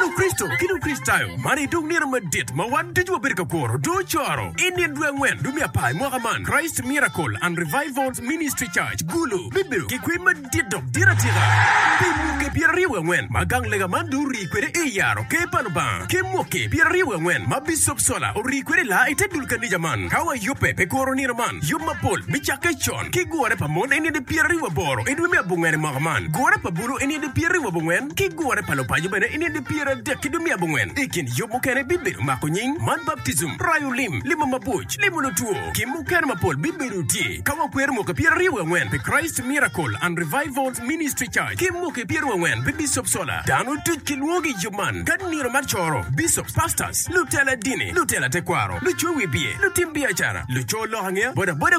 Lukricito ki Lukricitayo, man aye dong nino madit ma wan ducu wabedo ka kuro. Dong ocoro i nino dwe angwen dwe me apar i mwaka man, Christ Miracle and Revivals Ministry Church, Gulu, bibedo ki kwee madit dok dit atika. Pi mwaki pyeraryo wiye angwen ma gang lega man dong orii kwede i yaro Ker pa Lubanga, ki mwaki pyeraryo wiye angwen ma Bicop Sola orii kwede i laa i te dul kanija man, ka wayubbe pi kuro nino man, yub mapol bicakke con. ki gure pa mon eni adi pyera ribu aboro idwe me abongwen imwaka man, gure pa bulu eni adi pyera ribu abongwen, ki gure pa lupaco bene eni adi pyera adek idwe me abongwen. Ikin yub mukene bibedo mako nying, man baptism, rayo lim, limo mabuc, limo lutwo, ki mukene mapol bibedo tye ka wakwero mwaki pyera ribu angwen pi Christ Miracle and Revivals Ministry Church ki mwaki pyera ribu angwen pi Bishop Solar. Dano duc ki lwogi iyub man ka nino mar coro, Bishops, Pastors, lutela dini, lutela tekwaro, lucowi biye, lutim biacara, luco lok angeya, boda boda,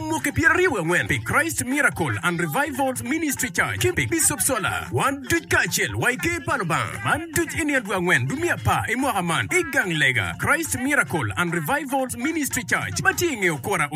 Mwaki pyeraryo wangwen pi Christ Miracle and Revivals Ministry Church ki pi Bicop Sola. Wan duc kacel wa i Ker pa Lubanga man duc i nino dwe angwen dwe me apar i mwaka man i gang lega Christ Miracle and Revivals Ministry Church ma tye i nge okura